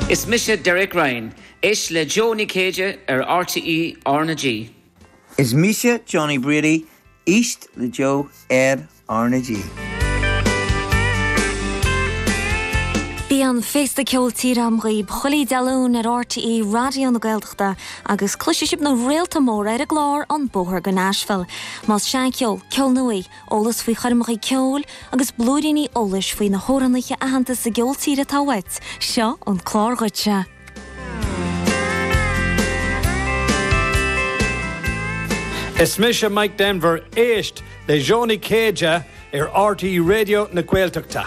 Is mise Derek Ryan. Éist le Joe Ó Céide ar rte RnaG. Is mise Johnny Brady. Éist le Joe ar RnaG. Bíonn féasta ceoil tíre dhaoibh chuile Dé Luain ar RTÉ Raidió na Gaeltachta agus cloisfidh sibh na réalta móra ar an gclár An Bóthar go Nashville. Más seancheol, ceol nua, Eolas faoi choirmeacha ceoil agus blúiríní eolais faoi na hamhránaithe aitheanta sa gceol tíre atá uait, seo an clár duitse! Is mise Mike Denver, éist le Joe Ó Céide ar RTÉ Raidió na Gaeltachta.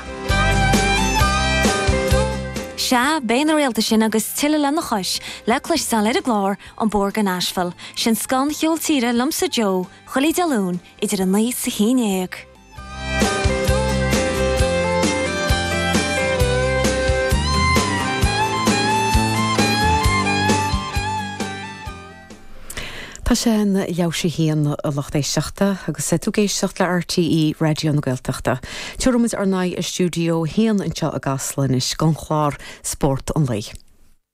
Sea, beidh na réalta sin agus tuilleadh lena chois le cloisteáil ar an gclár An Bóthar go Nashville, sin scoth an cheoil tíre liomsa Joe chuile Dé Luain, idir a naoi 's a haon dhéag. Tá sé ina leathuair tar éis a haon a lucht éisteachta agus tá tú ag éisteacht le RTÉ Raidió na Gaeltachta. Tabharfaidh muid ár n-aghaidh ar stiúideo a haon anseo i gCasla anois don chlár Spórt an Lae.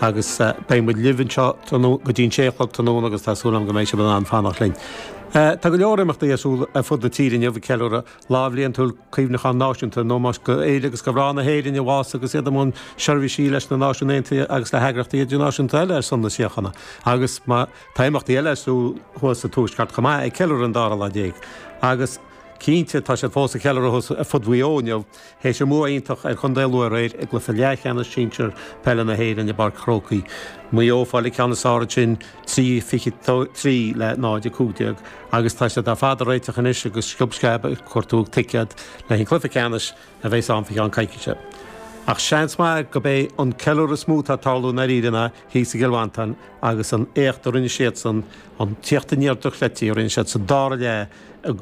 agus beidh muid libh anseo go dtí'n sé a chlog tráthnóna agus tá súil agam go mbeidh sibh in ann fanacht linn. Tá go leor imeachtaí ar siúl ar fud na tíre inniu ag ceiliúradh lá bliantúil Cuimhneachán Náisiúnta in ómós d'fhir agus do mhná na hÉireann a bhásaigh agus iad i mbun seirbhísí leis na Náisiúin Aontaithe agus le heagraíochtaí idirnáisiúnta eile ar son na síochána agus tá imeachtaí eile ar siúl thuas sa Tuaisceart chomh maith ag ceiliúradh an dara lá déag agus cinnte tá siad fós ag ceiliúradh thuas ar fud Mhaigh Eo inniu. Théis bua iontach ar Chontae Lú aréir i gcluiche leathcheannais sinsear peile na hÉireann i bPáirc an Chrócaigh, Maigh Eo ag fáil an ceann is fearr ansin trí 23 le náid a 15 agus tá siad ar fad ag réiteach anois agus sciob sceab ag cuartú ticéad leis an cluiche ceannais a bheas ann fa cheann coicíse. Ach seans maith gurb é an ceiliúradh is mó atá ag tarlú i ndairíre ná thíos i gCill Mhantáin agus an t-éacht a rinne siadsan, an tíocht aniar dochreidte a rinne siad sa dara leath i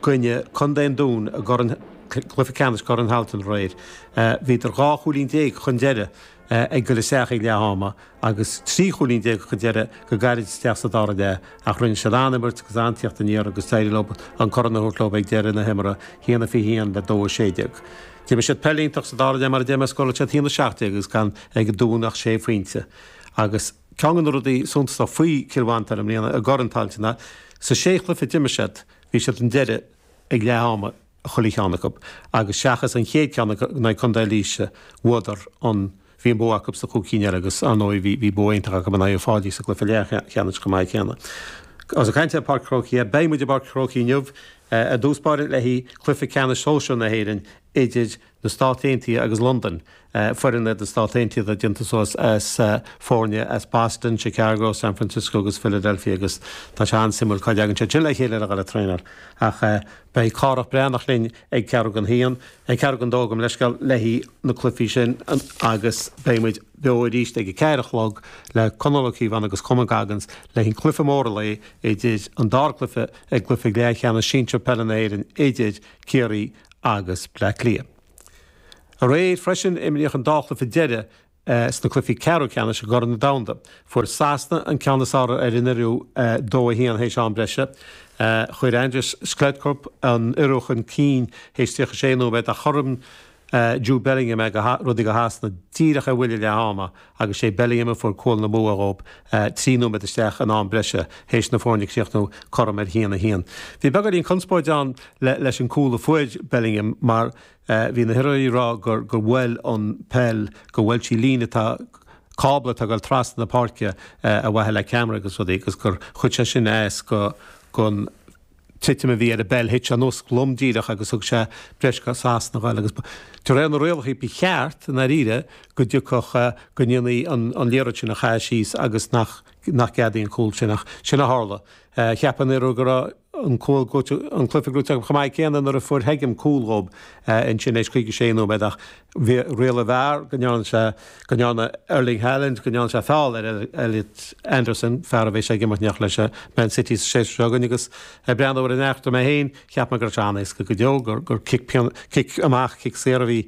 gcoinne Contae an Dúin i gCorn Cluiche Ceannais Chorn Thailteann aréir. Bhíodar dhá chúilín déag chun deireadh ag dul isteach ag leath ama agus trí chúilín déag chun deireadh go gairid isteach sa dara leath ach rinne siad an-an imirt agus an-tíocht aniar agus d'éirigh leo an corn a thabhairt leo ag deireadh na himeartha, hAon a Fiche hAon le Dó a Sé Déag. D'imir siad peil iontach sa dara leath mar a deir mé, scóráil siad hAon a Seacht Déag is gan ag an Dún ach sé phointe agus Ceann de na rudaí suntasacha faoi Chill Mhantáin i mbliana i gCorn Tailteann ná sna sé chluiche a d'imir siad, bhí siad chun deiridh ag leath ama i chuile cheann acu agus seachas an chéad ceann in aghaidh Contae Laoise, bhuadar an, bhí an bua acu sna cúig cinn eile agus ar ndóigh bhí bhí bua iontach acu in aghaidh Uíbh Fhailí sa gcluiche leathcheannais chomh maith céanna. Agus ag caint ar Pháirc an Chrócaigh, beidh muid i bPáirc an Chrócaigh inniu i dtús báire le cluiche ceannais sóisear na hÉireann idir na Stát Aontaithe agus Londain, foireann na Stát Aontaithe déanta suas as foirne as Boston, Chicago, San Francisco agus Philadelphia agus tá sé an-suimiúil cá dtagann siad sin le chéile ar a dhála traenáil. Ach beidh Cárthach Breathnach linn ag ceathrú don haon, ag ceathrú don dó, gabh mo leithscéal, le haghaidh na cluifí sin agus beidh muid beo arís ag a ceathair a chlog le Conall Ó Cíobháin agus Coman Goggins le haghaidh an cluiche mór an lae idir an dá cluiche i gcluiche leathcheannais sinsir peile na hÉireann idir Ciarraí agus Bleá Cliath. Aréir freisin imríodh an dá chluiche deireadh sna cluichí ceathrú ceannais i gCorn an Domhanda. Fuair Sasana an ceann is fearr ar an Ioruaidh 2 1 théis am breise. Chuir Andreas Schjelderup an Ioruaidh chun cinn théis 36 nóiméad ach chothromaigh Jude Bellingham é, rudaí go Shasana díreach ar bhuille leath ama. agus sé Bellingham a fuair cúl na mbua dhóib trí nóiméad isteach in am breise théis na foirne críochnú cothrom ar haon a haon. Bhí beagáinín conspóid ann leis an cúl a fuair Bellingham mar bhí na hIoruaigh ag rá gur gur bhuail an peil go bhuail sí líne atá cábla atá ag dul trasna na páirce ar mhaithe le ceamara agus rudaí agus gur chuir sé sin as go go titim a bhí ar an bpeil, thit sé anuas lom díreach agus thug sé breis go Sasana a ghoil agus de réir na rialacha ba cheart, i ndairíre, go dtiocfadh, go ndéanfaí an liathróid sin a chaitheamh síos agus nach gceadófaí an cúl sin ach sin a tharla. Cheap an Ioruaidh go raibh an cúl an cluiche gnóite acu chomh maith céanna nuair a fuair Heggem cúl dhób ansin théis 56 nóiméad ach Rialaigh VAR, go ndearna sé, go ndearna Erling Haaland, go ndearna sé feall ar Elliot Anderson, fear a bheas ag imirt in éineacht leis ag Man City sa séasúr seo chugainn agus ag breathnú ar an eachtra mé féin, cheap mé go raibh sé an-éasca go deo, gur, gur cic, cic amach, cic saor a bhí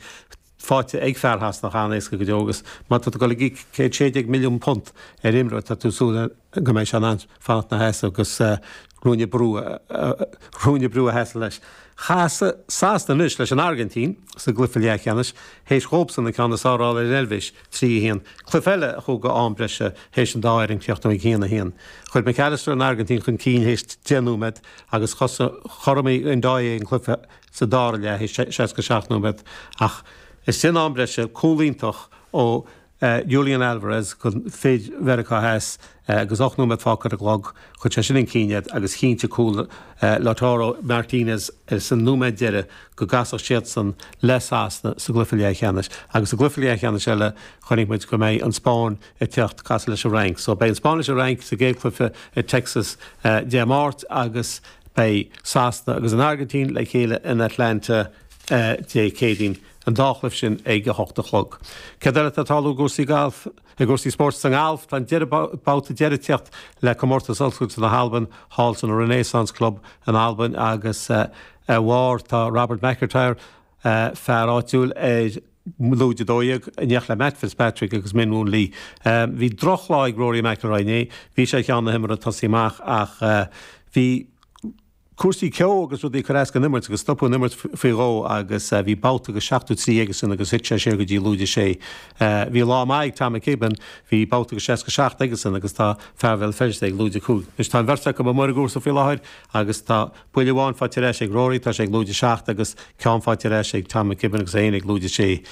faighte ag fear Shasana, an-éasca go deo agus má tá tú ag goil ag íoc céad sé déag milliún punt ar imreoir, tá tú ag súil le. go mbeidh sé in ann fanacht ina sheasamh agus ruainne brú a sheasamh leis. Casfaidh Sasana anois leis an Airgintín sa gcluiche leathcheannais théis dhóbhsan an ceann is fearr a fháil ar an Eilvéis, 3, 1, cluiche eile a chuaigh go am breise théis an dá fhoireann críochnú ag 1, 1. Chuir Mac Allister an Airgintín chun cinn théis deich nóiméad agus chothromaigh Ndoye an cluiche sa dara leath théis 67 nóiméad ach ins an am breise cúl iontach ó Julian Alvarez go fir Mheiriceá Theas agus ocht nóiméad fágtha ar an gclog, chuir sé sin chun cinn iad agus chinntigh cúl Lautaro Martinez sa nóiméad deireadh go gcasfadh siadsan le Sasana sa gcluiche leathcheannais. Agus sa gcluiche leathcheannais eile, chonaic muid go mbeidh an Spáinn ag teacht casadh leis an Fhrainc. So beidh an Spáinn leis an Fhrainc sa gcéad cluiche i Texas Dé Máirt agus beidh Sasana agus an Airgintín le chéile in Atlanta Dé Céadaoin. an dá chluiche sin ag 8 a chlog. Céard eile atá ag tarlú i gcúrsaí spóirt sa ngalf? Tá an deireadh babhta deiridh ag teacht le Comórtas Oscailte na hAlban thall san Renaissance Club in Albain agus ar bharr tá Robert MacIntyre, fear áitiúil ar lúide 12, in éineacht le Matt Fitzpatrick agus Min Woo Lee. Bhí drochlá ag Rory McIlroy inné, bhí sé ar cheann na himeartha ag tosaí amach ach bhí. cúrsaí ceo agus rudaí ag cur as don imirt agus stopadh an imirt faoi dhó agus bhí babhta go seachtó trí aige sin agus thit sé siar go dtí lúide sé. Bhí lá maith ag Tom McKibbin, bhí babhta go seasca seacht aige sin agus tá fear Bhéal Feirste ag lúide cúig. Anois tá an bheirt acu amuigh ar an gcúrsa faoi láthair agus tá buille amháin faighte ar ais ag Rory, tá sé ag lúide seacht agus ceann faighte ar ais ag Tom McKibbin agus é féin ag lúide sé.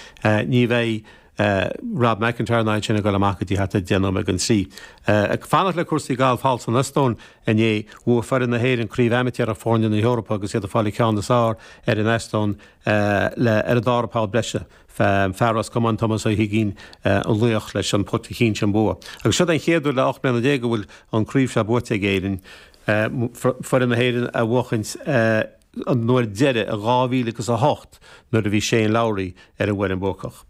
Ní bheidh. Rob MacIntyre ná iad sin ag dul amach go dtí thart ar 10 nóiméad don trí. Ag fanacht le cúrsaí gailf thall san Eastóin inné, bhuaigh foireann na hÉireann Craobh Amaitéarach Foirne na hEorpa agus iad ag fáil an ceann is fearr ar an Eastóin ar an dara poll breise. Fear Ros Comáin Tomás Ó hUiginn an laoch leis an putt a chinntigh an bua. Agus seo é an chéad uair le 18 mbliana go bhfuil an craobh seo buaite ag Éirinn. Foireann na hÉireann á bhuachaint. an uair deiridh i dhá mhíle agus a hocht nuair a bhí Shane Lowry ar an bhfoireann bhuacach.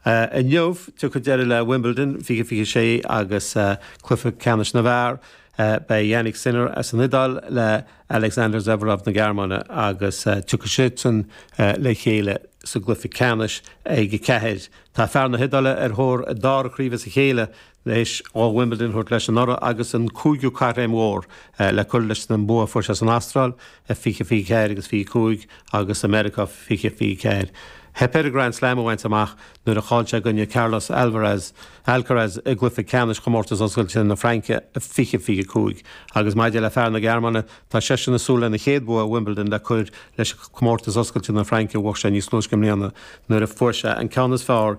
Inniu, tiocfaidh deireadh le Wimbledon 2026 agus cluiche ceannais na bhfear. Beidh Jannik Sinner as an Iodáil le Alexander Zverev na Gearmáine agus tiocfaidh siadsan le chéile sa gcluiche ceannais ag a ceathair. Tá fear na hIodáile ar thóir a dara craoibhe as a chéile Théis dó Wimbledon a thabhairt leis anuraidh agus an cúigiú Caithréim Mhór le cur leis an mbua a fuair sé san Astráil, 20, 24 agus 25, agus i Meiriceá, 20, 24, theip air an Grand Slam a bhaint amach nuair a chaill sé i gcoinne Carlos Alvaraz, Alcaraz i gcluiche ceannais Chomórtas Oscailte na Fraince, 20, 25, agus maidir le fear na Gearmáine, tá seisean ag súil lena chéad bhua i Wimbledon le cur leis an Comórtas Oscailte na Fraince a bhuaigh sé níos túisce i mbliana nuair a fuair sé an ceann is fearr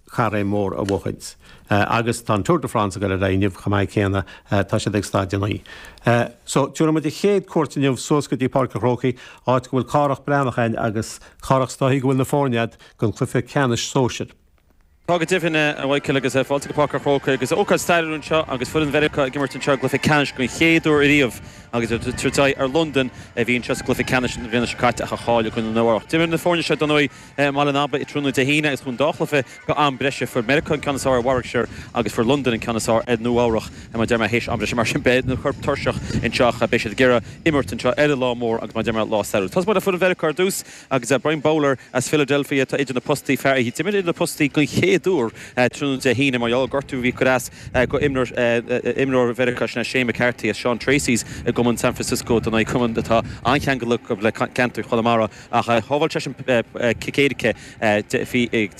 caithréim mhór a bhuachaint. Agus tá an Tour de France ag dul ar aghaidh inniu chomh maith céanna, tá siad ag staid a naoi. So, tiúrfaidh muid an chéad chuairt inniu suas go dtí Páirc an Chrócaigh, áit go bhfuil Cárthach Breathnach ann agus Cárthach is dóichí go bhfuil na foirne a'd gon cluiche ceannais sóisir. Tá go deimhin, a Mhichael, agus fáilte go Páirc an Chrócaigh agus ócáid stairiúil anseo agus foireann Mheiriceá ag imirt anseo i gcluiche ceannais don chéad uair ariamh agus iad ag tabhairt aghaidh ar Londain a bhí anseo sa gcluiche ceannais na bliana seo caite ach a chaill i gcoinne Nua-Eabhrac. D'imir na foirne seo dar ndóigh. i mBaile an Aba tráthnóna Dé hAoine agus chuaigh an dá chluiche go am breise. Fuair Meiriceá an ceann is fearr ar Warwickshire agus fuair Londain an ceann is fearr ar Nua-Eabhrac. Mar deir mé, théis am breise, mar sin beidh na coirp tuirseach anseo ach beidh siad ag iarraidh imirt anseo arae lá mór agus mar deir mé, lá stairiúil. Tosóidh muid le foireann Mheiriceá ar dtús agus Brian Bowler as Philadelphia atá idir na postaí, fear a d'imir idir na postaí den chéad uair tráthnóna Dé hAoine mar gheall ar gortú a bhí ag cur as go imreoir Mheiriceá, sin é Shane McCarthy as Seán Treacy's i gCumann San Francisco dar ndóigh, cumann atá an-cheangal acu le ceantar Chonamara. ach shábháil seisean cic éirice ag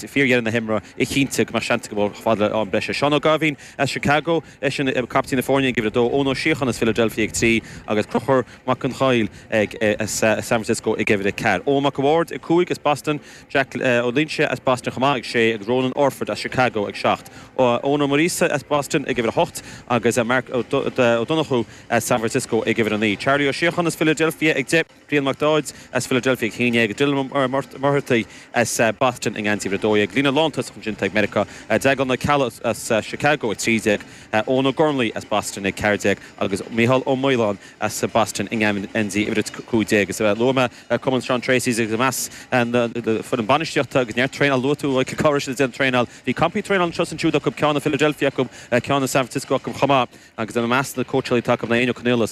fíordheireadh na himeartha a chinntigh go mbeadh seans acu ar fad le am breise. Seán Ó Gaibhín as Chicago, eisean captaen na foirne ag uimhir a dó, Eoin Ó Síocháin as Philadelphia ag trí agus Conchúr Mac Conghail as San Francisco ag uimhir a ceathair. Eoghan Mac a' Bhaird ag cúig as Boston, Jack Ó Loingsigh as Boston chomh maith ag sé agus Ronan Orford as Chicago ag seacht. Eoin Ó Muiríosa as Boston ag uimhir a hocht agus Mark Ó Donnchú as San Francisco ag uimhir a naoi. Charlie Ó Síocháin as Philadelphia ag deich. Brian Mac Dáid as Philadelphia ag a haon déag agus Dillon Ó Muircheartaigh as Boston i ngeansaí uimhir a dó dhéag líne lántosach ansin ag Meiriceá Declan Ó Ceallaigh as Chicago ag trí déag Eoin Ó Gormlaí as Boston ag ceathair déag agus Micheál Ó Maoláin as Boston i ngeansaí uimhir a cúig déag is luaigh mé Cumann Sean Treacys agus i measc na foireann bainistíochta agus neart traenáil luaigh tú cén chaoi a raibh siad ag déanamh traenáil bhí campaí traenáil anseo is ansiúd acu ceann i Philadelphia acu ceann i San Francisco acu chomh maith. agus i measc na cóitseálaithe atá acu ná Éinne Ó Conaola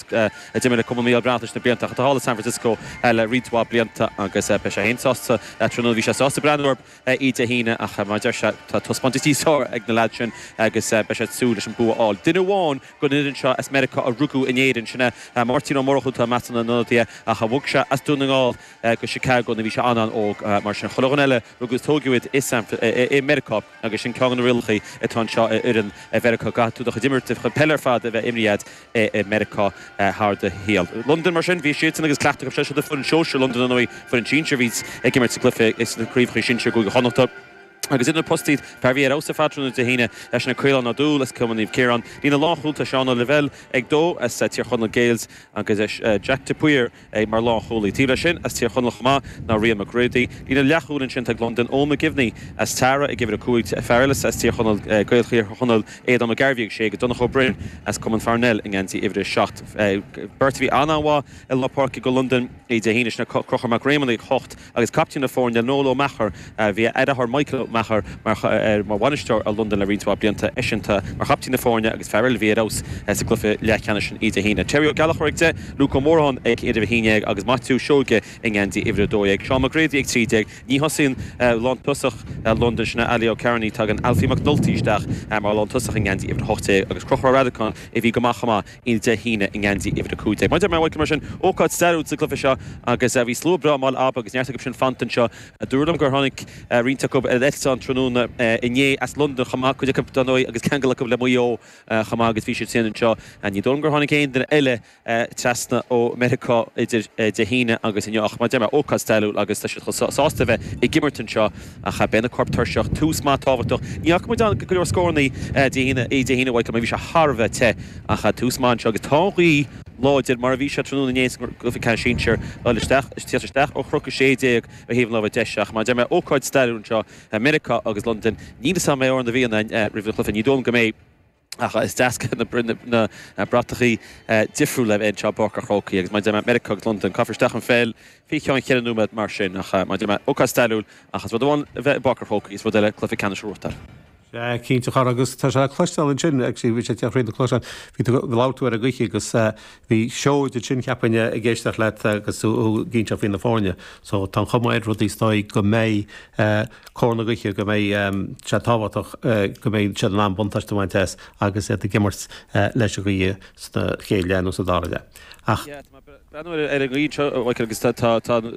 a d'imir le Cumann Micheál Breathnach leis na blianta ach atá thall i San Francisco le roinnt mhaith blianta agus beidh sé féin sásta tráthnóna bhí sé sásta breathnú orthu Dé hAoine ach mar a deir sé tá taispeántais níos fearr ag na leaids sin agus beidh sé ag súil leis an bua a fháil. Duine amháin den fhoireann seo as Meiriceá a rugadh in Éirinn, sin é Máirtín Ó Murchú, atá i measc na n-ionadaithe ach bhog sé as Dún na nGall go Chicago nuair a bhí sé an-an-óg mar sin chuile dhuine eile rugadh is tóigeadh iad i Meiriceá. Agus sin ceann de na rialacha atá anseo d'fhoireann Mheiriceá. Caithfidh tú do chuid imirt, do chuid peile ar fad a bheith imrithe agat i Meiriceá thar do shaol. Londain mar sin, bhí siadsan agus cleachtadh acu seo í foireann shóisir Londain ar ndóigh, foireann sinsir a bhí ag imirt sa gcluiche sna craobhacha sinsir i gCúige Chonnachta. Agus idir na postaí, fear a bhí ar fheabhas tráthnóna Dé hAoine, leis ná Caolán Ó Dúill as Cumann Naomh Ciarán, líne lánchúil tá Seán Ó Lavelle ag dó as Tír Chonaill Gaels agus Jack de Paor, é mar lánchúlaí. Taobh leis sin, as Tír Chonaill chomh maith ná Rían McGready, líne leathchúil ansin ag Londain, Eoin McGivney as Tara ag uimhir a cúig, fear eile as Tír Chonaill, Gael Thír Chonaill, Aodán Ó Gairbhí ag sé agus Donncha Ó Broin as Cumann Pharnell i ngeansaí uimhir a seacht. Beirt a bhí an-mhaith i lár páirce do Londain Dé hAoine sin, Conchúr Mac Réamoinn ag hocht, agus caiptín na foirne Noel Ó Meachair. Bhí a dheartháir Michael Ó Meachair mar bhainisteoir ar Londain le roinnt mhaith blianta eisean atá mar chaiptín na foirne agus fear eile a bhí ar fheabhas sa gcluiche leathcheannais sin Dé hAoine. Terry Ó Gallachóir ag deich, Luke Ó Móráin ag uimhir a haon déag agus Maitiú Seoige i ngeansaí uimhir a dó dhéag. Seán McGrady ag trí déag. Ní thosaíonn lántosach Londain, sin é Ali Ó Cearnaigh, tagann Alfie Mac Nulty isteach mar lántosach i ngeansaí uimhir a hocht déag agus Crochúr Ó Redacáin a bhí go maith chomh maith. Dé hAoine i ngeansaí uimhir a cúig déag. Mar a deir mé ar ball mar sin, ócáid stairiúil sa gcluiche seo agus bhí slua breá anall acu agus neart acu sin fanta anseo. Dúradh liom gur tháinig roinnt acu ar an eitleán tráthnóna inné as Londain chomh maith, cuid acu dar ndóigh agus ceangal acu le Maigh Eo chomh maith agus bhí siad féin anseo. Ní dóigh liom gur tháinig aon duine eile trasna ó Mheiriceá idir Dé hAoine agus inniu ach, mar a deir mé, ócáid stairiúil agus tá siad chomh sásta a bheith ag imirt anseo. Ach beidh na coirp tuirseach. Tús maith tábhachtach. Ní fhaca muid ann ach go leor scórannaí Dé hAoine uaidh mar bhí sé thar a bheith te. Ach tús maith anseo agus tá an ghaoth láidir mar a bhí sé tráthnóna inné sa gcluiche ceannais sinsir. Ag tíocht isteach ó Chnoc 16 ar thaobh an láimhe deise. Ach mar a deir mé, ócáid stairiúil anseo. Meiriceá agus Londain. Níl 'fhios a'm an mbeidh Amhrán na bhFiann roimh an gcluiche. Ní dóigh liom go mbeidh. ach is deas na bratachaí difriúil a bheith anseo, Páirc an Chrócaigh agus mar a deir mé Meiriceá agus Londain, caithfear isteach an pheil fé cheann cheithre nóiméad, mar sin, ach mar a deir mé ócáid stairiúil, ach is rud amháin a bheith i bPáirc an Chrócaigh, is rud eile cluiche ceannais a bhuachtáil. Sea, cinnte, a chara, agus tá sé le cloisteáil ansin, ag bhí sé ag na cloisteáil, bhí tú, labhair tú ar an gcluiche agus bhí siad ansin, cheapainn, ag éisteacht leat agus tú ag inseacht faoi na foirne, so tá an chuma air, rudaí, is dóigh go mbeidh. cóir na gaoithe go mbeidh sé tábhachtach go mbeidh siad in ann buntáiste a bhaint as agus iad ag imirt leis an ghaoth sa chéad leath nó sa dara leath ach, Breathnaím ar an gcaoi seo, Mhichael, agus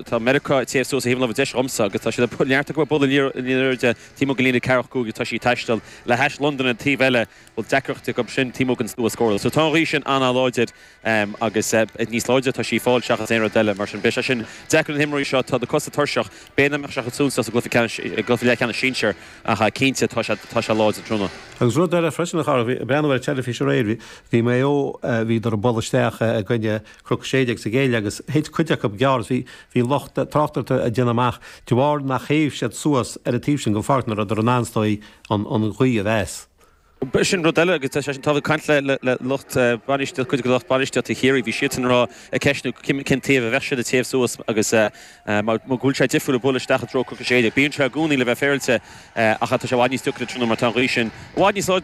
tá Meiriceá ag téamh suas ar thaobh na láimhe deise dhomsa agus tá siad ag neartú ag bualadh liathróid in airde taobh amuigh den líne ceathracha cúig agus tá sí ag taisteal le hais Londain ar an taobh eile. A bhfuil deacracht acu sin taobh amuigh den stua scór so tá an ghaoth sin an-láidir. Em, agus eh, eh, níos láidre tá sí ag fáil seachas aon rud eile, mar sin, beidh sé sin deacair ar na himreoirí seo, tá na cosa tuirseach, beidh an imirt seo ag súil suas i gcluiche ceannais, i gcluiche leathcheannais sinsir ach eh, cinnte tá sé, tá sé láidir, tráthnóna. Agus rud eile freisin a chara, bhí, bhreathnaigh mé ar an teilifís aréir, bhí, bhí Maigh Eo eh, bhíodar ag bualadh isteach eh, i gcoinne Cnoc 16 sa gcéad leath agus thit cuid acu gearr agus bhí, bhí lucht eh, tráchtaireachta ag déanamh amach de bharr nár théigh siad suas ar an taobh sin den pháirc nach rabhadar in ann, is dóigh, an, an ghaoth a mheas. B'shin rud eile agus tá mé tar éis a bheith ag caint le lucht bainistíochta, cuid de lucht bainistíochta Chiarraí, bhí siadsan ag rá, ag ceistniú cén taobh a bheadh siad, ag téamh suas agus mar go bhfuil sé difriúil ag bualadh isteach i dtreo Chnoc 16. Bíonn sé i gcónaí le bheith féaráilte ach tá sé i bhfad níos deacra tráthnóna mar tá an ghaoth sin i bhfad níos láidre ná